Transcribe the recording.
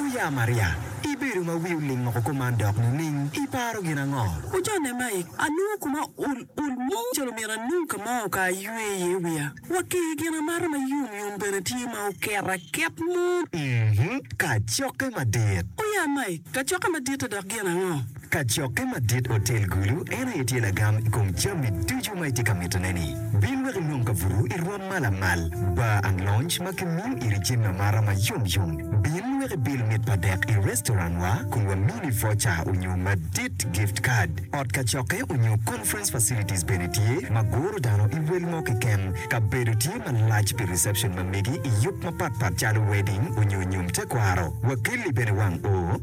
Oya Maria, ibedo ma wi oling woko kuman dok nining? Iparo gin ango? Oja nema ik. Anongo koma ol ol mo calo myero anong ka ma oka aywe iye wiya. Wa ki i gin amato ma yom yom bene tye ma oket aket mo. Uhmm, kacokke madit. Oya Mike, kacokke madit-ta dok gin ango? Kacokke madit otel gulu en aye tye lagam i kom jami ducu ma itye ka mitone-ni. Bin wek inong kabuto i rwom ma lamal, bar ang lonj ma gimiyo iri jami amata ma yom yom. Bin wek ibil mit pa dek i restaurantwa kun wamini voca onyo madit, gift card. Ot kacokke onyo conference facilities bene tye ma guro dano i wel mo keken. Kabedo tye malac pi reception ma megi i yub mapat pat calo wedding onyo nyom tekwaro. Wakelli bene wang o.